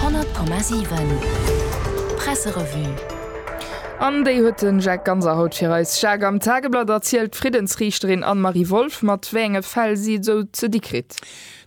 100,7 Presserevue. An déi huet den Jacques Ganser haut fir eis. Jacques, am Tageblatt erzielt d'Friddensriichterin Anne-Marie Wolff, mat wéi enge Fäll si et esou ze di kritt.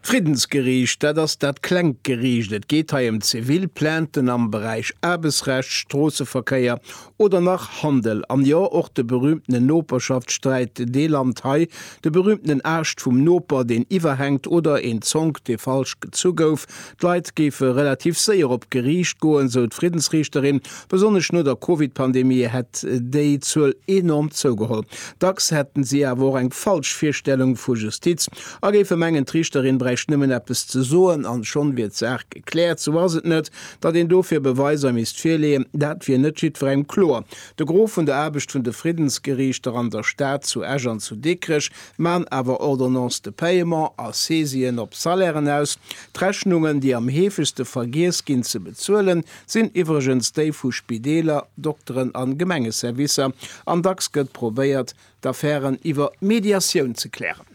D'Friddensgeriicht, dat ass dat klengt Geriicht. Et geet hei ëm zivil Plainten am Beräich Aarbechtsrecht, Stroosseverkéier, Oder nach Handel, an jo och de berühmtenen Noperschaftssträit, dee Land hei, de berühmtenen Aascht vum Noper, deen iwwerhänkt, oder een Zonk, dee falsch gezu gouf. D'Leit géife relativ séier op d'Geriicht goen, sou d'Friddensriichterin. Besonnesch no der Covid-Pandemie hätt déi Zuel enorm zougeholl. Dacks hätten si awer och eng falsch Virstellung vu Justiz a géife mengen, d'Riichterin bräicht nëmmen eppes ze soen an schonn wier d'Saach gekläert. Sou ass et net. Datt een dofir Beweiser misst virleeën, dat wier net jiddwerengem kloer. De Gros vun der Aarbecht vun de Friddensgeriichter an der Stad, zu Esch an zu Dikrech, man awer Ordonnances de paiement a Saisien op Salairen aus. D'Rechnungen, déi am heefegste vergiess ginn ze bezuelen, sinn iwwregens déi vu Spideeler, Dokteren a Gemengeservicer. An dacks gëtt probéiert, d'Affären iwwer Mediatioun ze klären.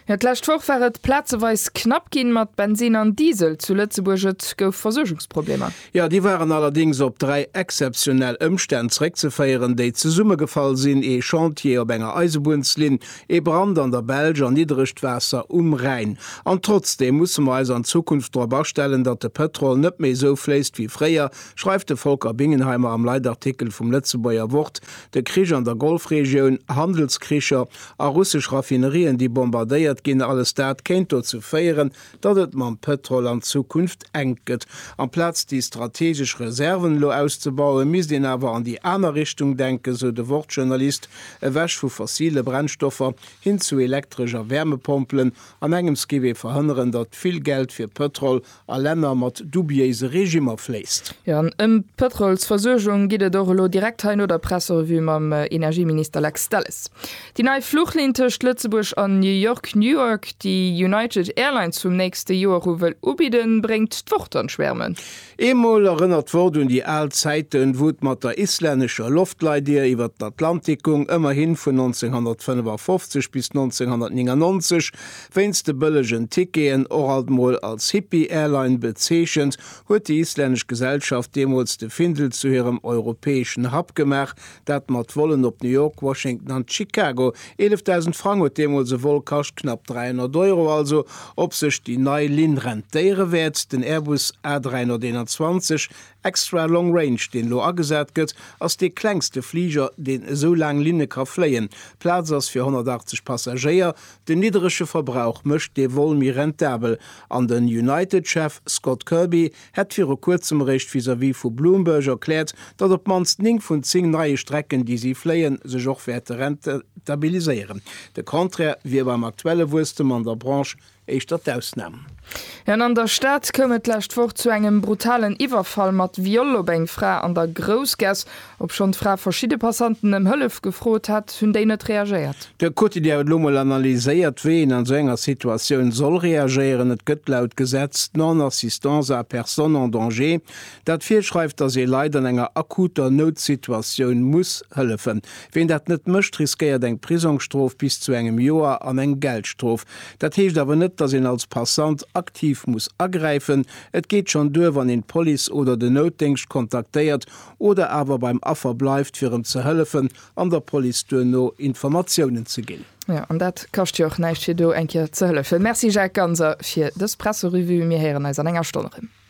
Jo, d'lescht Woch war et plazeweis knapp ginn mat Bensin an Diesel zu Lëtzebuerg. Et gouf Versuergungsproblemer. Jo, déi waren allerdéngs op dräi exzeptionell Ëmstänn zréckzeféieren, déi zesummegefall sinn, ee Chantier op enger Eisebunnslinn, ee Brand an der Belsch an niddregt Waasser um Rhäin. An trotzdeem musse mer eis an Zukunft drop astellen, datt de Pëtrol net méi esou fléisst wéi fréier, schreift de Volker Bingenheimer am Leitartikel vum Lëtzebuerger Wort De Krich an der Golfregioun, Handelskricher a russesch Raffinerien, déi bombardéiert ginn, alles dat kéint dozou féieren, datt et mam Pëtrol an Zukunft enk gëtt. Amplaz déi strategesch Reserven elo auszebauen, misst een awer an déi aner Richtung denken, sou de Wort-Journalist, ewech vu fossile Brennstoffer hin zu Elektresch a Wärmepompelen, an engems géif ee verhënneren, datt vill Geld fir Pëtrol a Länner mat dubiéise Regimmer fléisst. Jo, an ëm d'Pëtrolsversuergung geet et och elo direkt hei no der Presserevue mam Energieminister Lex Delles. Déi nei Fluchlinn tëscht Lëtzebuerg an New York, Newark, déi United Airlines vum nächste Joer u wëll ubidden, bréngt d'Wort an d'Schwäermen. Eemol erënnert d'Wort un déi al Zäiten, wou et mat der islännescher Loftleitdier iwwer den Atlantik gung, ëmmerhi vun 1955 bis 1999 Wéinst de bëllegen Ticketen, och alt mol als Hippie-Airline bezeechent, huet déi islännesch Gesellschaft deemools de Findel zu hirem europäeschen Hub gemaach, dat mat Vollen op New York, Washington an Chicago. 11.000 Frang huet deemools e Vol kascht, knapp 300 Euro also. Ob sech déi nei Linn rentéiere wäert? Den Airbus A321 Extra Long Range, deen elo agesat gëtt, ass dee klengste Fliger, deen esou laang Linne ka fléien. Plaz ass fir 180 Passagéier, den nidderege Verbrauch mécht dee Vol méi rentabel an den United-Chef Scott Kirby hätt viru kuerzem eréischt vis-à-vis vu Bloomberg erkläert, datt op d'mannst 9 vun 10 neie Strecken, déi si fléien, sech och wäerte rentabiliséieren. De Contraire wier beim aktuelle Wuesstem an der Branche. éischter d'Ausnam. An an der Stad koum et d'lescht Woch zu engem brutalen Iwwerfall mat Viol op eng Fra an der Groussgass. Obschonn d'Fra verschidde Passanten ëm Hëllef gefrot hat, hunn déi net reagéiert. De Quotidien huet elo mol analyséiert, wéi een an esou enger Situatioun soll reagéieren. Et gëtt laut Gesetz d'Non-assistance à personne en danger, dat virschreift, datt ee Leit an enger akuter Noutsituatioun muss hëllefen. Ween dat net mécht, riskéiert eng Prisongsstrof bis zu engem Joer an eng Geldstrof. Dat heescht awer net, dass een als Passant aktiv muss agräifen. Et geet schonn duer, wann een d'Police oder den Noutdéngscht kontaktéiert oder awer beim Affer bleift, fir em ze hëllefen an der Police duerno Informatiounen ze ginn. Jo, an dat kascht jo och näischt, fir do eng Kéier ze hëllefen. Merci Jacques Ganser fir dës Presserevue. Mir héieren eis an enger Stonn erëm.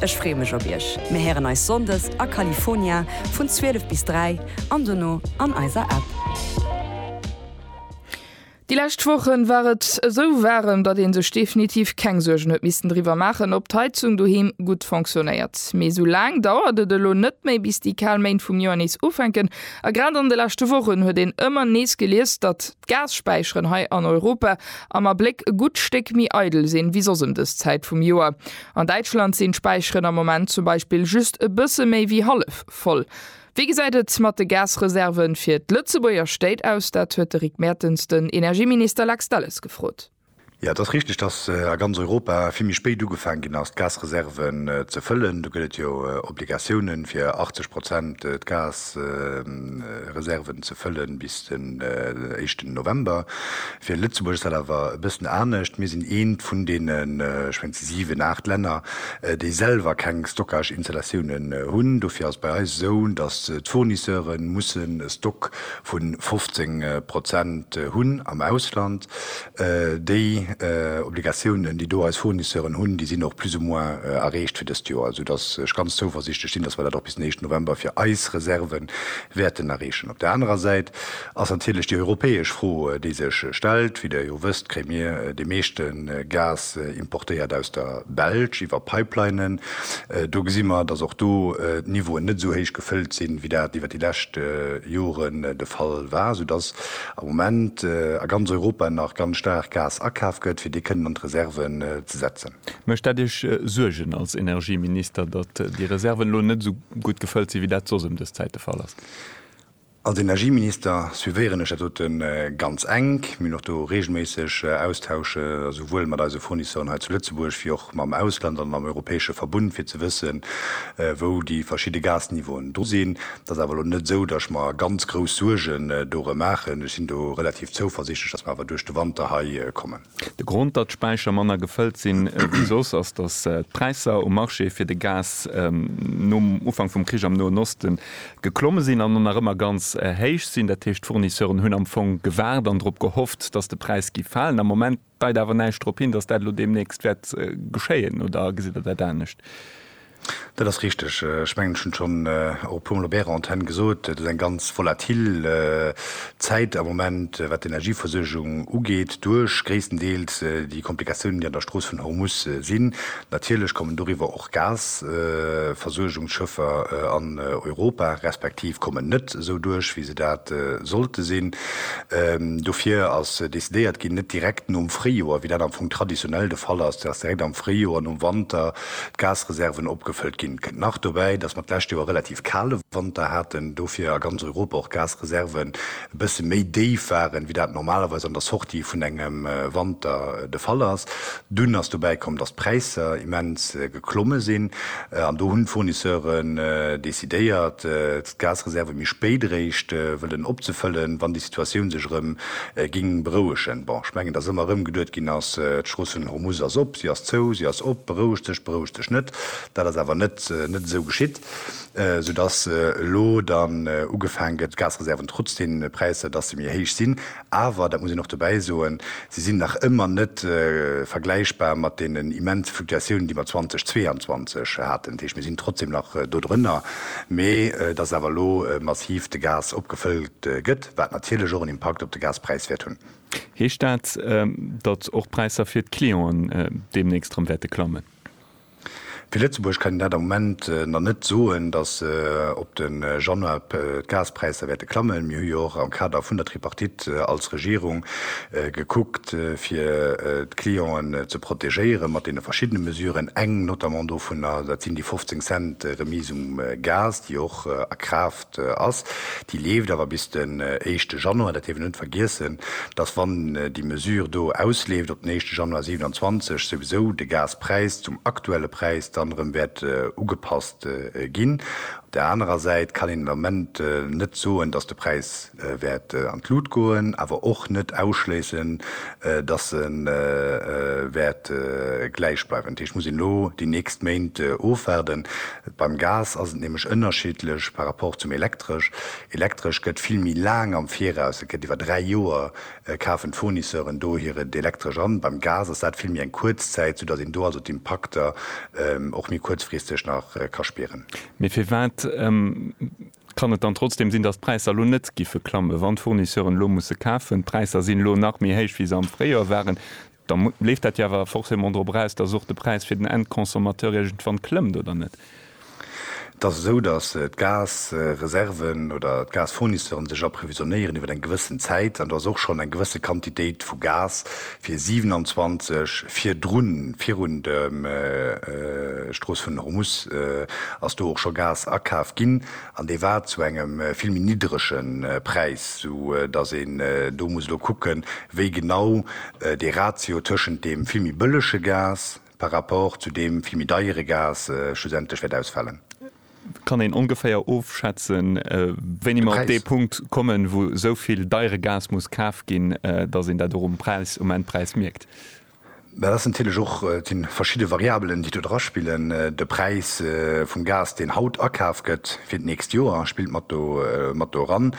Ech free mech op iech. Mir héieren eis Sonndes a California vun 12 bis 3 an dono an eiser App. Déi lescht Wochen war et esou waarem, datt een sech definitiv keng Suergen huet missten driwwer maachen, ob d'Heizung doheem gutt fonctionnéiert. Mee esou laang dauert et elo net méi, bis déi kal Méint vum Joer nees ufänken. A grad an de leschte Wochen huet een ëmmer nees gelies, datt. D'Gas-Späicheren hei an Europa am Abléck e gutt Stéck méi eidel sinn, wéi soss ëm dës Zäit vum Joer. An Däitschland sinn d'Späicheren am Moment zum Beispill just e bësse méi wéi hallef voll. Wéi gesäit et mat de Gas-Reserve fir d'Lëtzebuerger Stéit aus? Dat huet de Rick Mertens den Energieminister Lex Delles gefrot. Jo, et ass richteg, dass a ganz Europa vill méi spéit ugefaangen ginn ass, d'Gasreserven ze fëllen. Do gëtt et jo Obligatiounen, fir 80 Prozent d'Gasreserven ze fëllen bis den éischten November. Fir Lëtzebuerg ass dat awer e bëssen anescht. Mir sinn eent vun deenen, ech mengen, et si siwen, aacht Länner, déi selwer keng Stockage-Installatiounen hunn. Dofir ass et bei eis esou, dass d'Fournisseure mussen e Stock vu 15 Prozent hunn am Ausland. Déi Obligatiounen, déi do eis Fournisseuren hunn, déi sinn och plus ou moins erreecht fir dëst Joer, esoudass ech ganz zouversiichtlech sinn, dass mer dat och bis den éischten November fir eis Reserve wäerten erreechen. Op där anerer Säit ass natierlech déi europäesch Fro, déi sech stellt. Wéi Der jo wësst, kréie mir dee meeschte Gas importéiert aus der Belsch iwwer Pipelinen. Do gesi mer, dass och do d'Niveauen net esou héich gefëllt sinn, wéi dat iwwer déi lescht Jore de Fall war, esoudass am Moment a ganz Europa nach ganz staark Gas akaf gëtt, fir dee kënnen an d'Reserven ze setzen. Mécht dat Iech Suergen als Energieminister, datt déi Reserven elo net esou gutt gefëllt sinn, wéi dat soss ëm dës Zäit de Fall ass? Als Energieminister suivéieren ech dat dote ganz enk. Mir hunn och do reegelméisseg Austausche souwuel mat eise Fournisseuren hei zu Lëtzebuerg wéi och mam Ausland an am europäesche Verbund, fir ze wëssen, wou déi verschidde Gasniveauen do sinn. Et ass awer elo net esou, datt ech mer ganz grouss Suergen dorëm maachen. Ech sinn do relativ zouversichtlech, datt mer awer duerch de Wanter hei kommen. De Grond, datt d'Späicher manner gefëllt sinn wéi soss, ass, datt d'Präisser um Marché fir de Gas nom Ufank vum Krich am Noen Oste geklomme sinn an nach ëmmer ganz héich sinn. Dat heescht, d'Fournisseuren hunn am Fong gewaart an drop gehofft, datt de Präis géif falen. Am Moment. Deit awer näischt drop hin, datt dat elo deemnächst wäert geschéien, oder gesitt Der dat anescht? Dat ass richteg. Ech mengen, ech hunn et schonn och e puermol op Ärer Antenn gesot, Et ass eng ganz volatil Zäit am Moment, wat d'Energieversuergung ugeet, duerch gréisstendeels déi Komplikatiounen, déi an der Strooss vun Hormus sinn. Natierlech kommen doriwwer och Gasversuergungsschëffer an Europa, respektiv kommen net esou duerch, wéi se dat sollte sinn. Dofir ass decidéiert ginn, net direkt nom Fréijoer, wéi dat am Fong traditionell de Fall ass, dass direkt am Fréijoer, nom Wanter, d'Gasreserven opgefëllt ginn. Kënnt nach dobäi, dass mer d'lescht Joer relativ kale Wanter haten, dofir a ganz Europa och Gasreserven e bësse méi déif waren, wéi dat normalerweis an der Sortie vun engem Wanter de Fall ass. Dunn ass dobäi komm, dass d'Präisser immens geklomme sinn an do hunn d'Fournisseuren decidéiert, d'Gasreserve méi spéit eréischt wëllen opzefëllen, wann déi Situatioun sech erëm géing berouegen. Bon, ech mengen, dass ëmmer erëm geduet ginn ass, d'Strooss vun Hormuz ass op, si ass zou, si ass op, berouegt sech, berouegt sech net. Dat ass awer net esou geschitt. sou dass elo dann ugefaang gëtt d'Gasreserven, trotz deene Präisser, dass se méi héich sinn, awer, dat muss een och dobäi soen, se sinn nach ëmmer net vergläichbar mat deenen immense Fluktuatiounen, déi mer 2022 haten. Dat heescht, mir sinn trotzdem nach do drënner, mee dass awer elo massiv de Gas opgefëllt gëtt, wat natierlech och en Impakt op de Gaspräis wäert hunn. Heescht dat, datt och d'Präisser fir d'Clienten deemnächst erëm wäerte klammen? Fir Lëtzebuerg kann een dat am Moment nach net soen, datt op de Januar d'Gaspräisser wäerte klammen. Mir hu jo och am Kader vun der Tripartite als Regierung gekuckt, fir d'Clienten ze protegéieren, mat deene verschiddene Mesuren. Eng notamment dovunner, dat sinn déi 15 Cent Remise um Gas, déi och a Kraaft ass, déi leeft awer bis den éischte Januar. Dat dierf een net vergiessen, dass, wann déi Mesure do ausleeft op den éischte Januar 27, souwisou de Gaspräis zum aktuelle Präis dann erëm wäert ugepasst ginn. Op där anerer Säit kann een den Ament net soen, dass de Präis wäert an d'Lut goen, awer och net ausschléissen, dass e wäert gläich bleiwen. Dat heescht, et muss een elo déi nächst Méint ofwaarden. Beim Gas ass et nämlech ënnerschiddlech par rapport zum Elektresch. Elektresch gëtt vill méi laang am Viraus, et gëtt iwwer dräi Joer kafen d'Fournisseuren do hiren Elektresch an. Beim Gas ass dat vill méi eng kuerz Zäit, soudatt een do also d'Impakter och méi kuerzfristeg nach ka spieren. Mee firwat kann et dann trotzdeem sinn, datt d'Präisser elo net giffe klammen, wann d'Fournisseuren elo musse kafen? D'Präisser sinn elo nach méi héich wéi se am Fréijoer waren. Da leeft dat jo awer forcément drop eraus, dass och de Präis fir den Endconsommateur iergendwann klëmmt, oder net? Et ass esou, dass d'Gasreserven oder d'Gasfournisseure sech approvisionnéieren iwwer eng gewëssen Zäit, an do ass och schonn eng gewësse Quantitéit vu Gas fir 27 virdrun, virun der Strooss vun Hormus, ass do och scho Gas akaf ginn. An dee war zu engem vill méi niddrege Präis, sou datt een do muss elo kucken, wéi genau dee Ratio tëschent deem vill méi bëllege Gas par rapport zu deem vill méi deiere Gas schlussendlech wäert ausfalen. Kann een ongeféier ofschätzen, wéini mer op dee Punkt kommen, wou esou vill deiere Gas muss kaf ginn, datt een dat och um Präis, um Endpräis mierkt? Mä et ass natierlech och, et si verschidde Variabelen, déi do draspillen. De Präis vum Gas, deen haut akaf gëtt fir d'nächst Joer, spillt mat do mat do eran.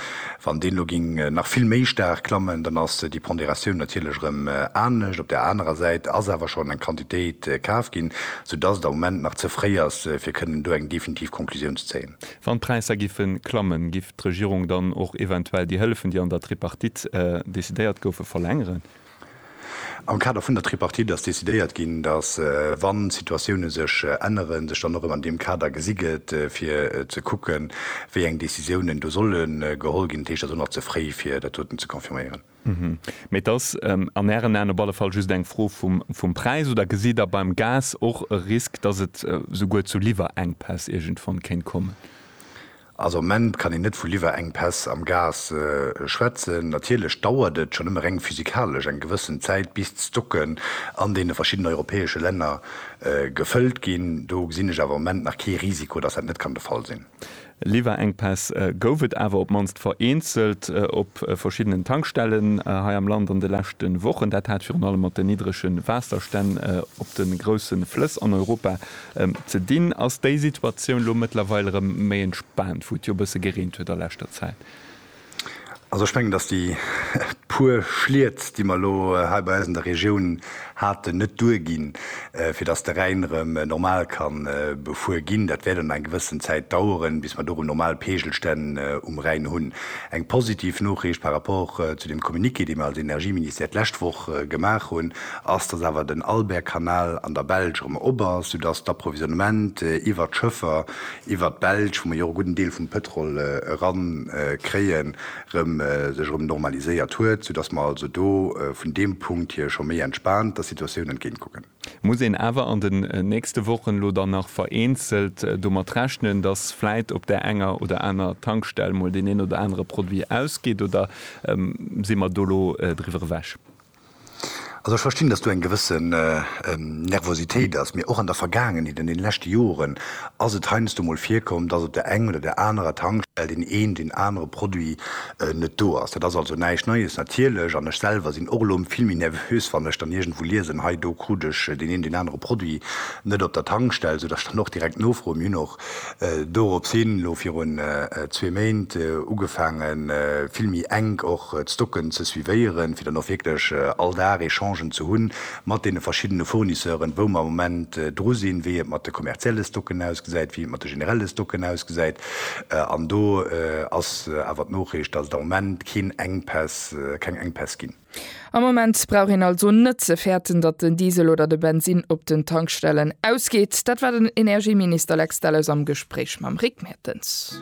Wann deen elo géing nach vill méi staark klammen, dann ass déi Ponderatioun natierlech erëm anescht. Op där anerer Säit ass awer schonn eng Quantitéit kaf ginn, soudass et am Moment nach ze fréi ass, fir kënnen do eng definitiv Conclusioun ze zéien. Wann d'Präisser giffe klammen, giff d'Regierung dann och eventuell déi Hëllefen, déi an der Tripartite decidéiert goufen, verlängeren? Am Kader vun der Tripartite ass decidéiert ginn, datt, wa Situatioune sech änneren, sech dann och erëm an deem Kader gesi gëtt, fir ze kucken, wéi eng Decisiounen do solle geholl ginn. Dat heescht, et ass och nach ze fréi, fir dat doten ze confirméieren. Mee et ass an Ären Aen op alle Fall just eng Fro vum Präis. Oder gesitt Der beim Gas och e Risk, datt et souguer zu Liwwerenkpäss iergendwann kéint kommen? Also am Moment kann een net vu Liwwerengpäss am Gas schwätzen. Natierlech dauert et, schonn ëmmer reng physikalesch, eng gewëssen Zäit bis d'Stocken an deene verschiddenen europäesche Länner gefëllt ginn. Do gesinn ech awer am Moment nach kee Risiko, datt dat net kann de Fall sinn. Liwwerengpäss gouf et awer op mannst vereenzelt op verschiddenen Tankstellen hei am Land an de leschte Wochen. Dat hat virun allem mat den niddrege Waasserstänn op de grousse Flëss an Europa Ze dinn ass déi Situatioun elo mëttlerweil erëm méi entspaant, wou et jo e bësse gereent huet a leschter Zäit. Also ech mengen, datt déi puer Schliet, déi mer elo hei bei eis an der Regioun haten, net duerginn, fir datt de Rhäin erëm normal ka befuer ginn. Dat wäert an enger gewëssen Zäit daueren, bis mer do erëm normal Peegelstänn um Rhäin hunn. Eng positiv Noriicht par rapport zu dem Communiqué, dee mer als Energieministère d'lescht Woch gemaach hunn, ass, dass awer den Albert-Kanal an der Belsch erëm op ass, soudass d'Approvisionnement iwwert d'Schëffer iwwert d'Belsch, wou mer jo och e gudden Deel vum Pëtrol erankréien, erëm sech erëm normaliséiert huet, soudass mer also do vun deem Punkt hier scho méi entspaant der Situatioun entgéint kucken. Muss een awer an den nächste Wochen elo dann nach vereenzelt domat rechnen, dass vläit op där enger oder aner Tankstell mol deen een oder anere Produit ausgeet, oder si mer do elo driwwer ewech? Also ech verstinn, dass do eng gewësse Nervositéit ass. Mee och an der Vergaangenheet, an deene leschte Joren ass et heiansdo mol virkomm, dass op der eng oder där anerer Tankstell deen een, deen anere Produit net do ass. Dat ass also näischt Neies natierlech. An ech selwer sinn och elo vill méi nervös, wann ech dann iergendwou liesen, hei do krut ech deen een, deen anere Produit net op der Tankstell, soudass ech dann och direkt nofroen. Mir hunn och Dorops hin, elo virun zwee Méint, ugefaange vill méi enk och d'Stocken ze suivéieren, fir dann och wierklech all Dag Echangen ze hu mat deene verschiddene Fournisseuren, wou mer am Moment dru sinn, wéi et mat de kommerzielle Stocken ausgesäit, wéi et mat de generelle Stocken ausgesäit. An do ass awer d'Noriicht, dass et am Moment keen Enkpäss, keng Enkpäss ginn. Am Moment brauch een also net ze fäerten, datt den Diesel oder de Bensinn op den Tankstellen ausgeet. Dat war den Energieminister Lex Delles am Gespréich mam Rick Mertens.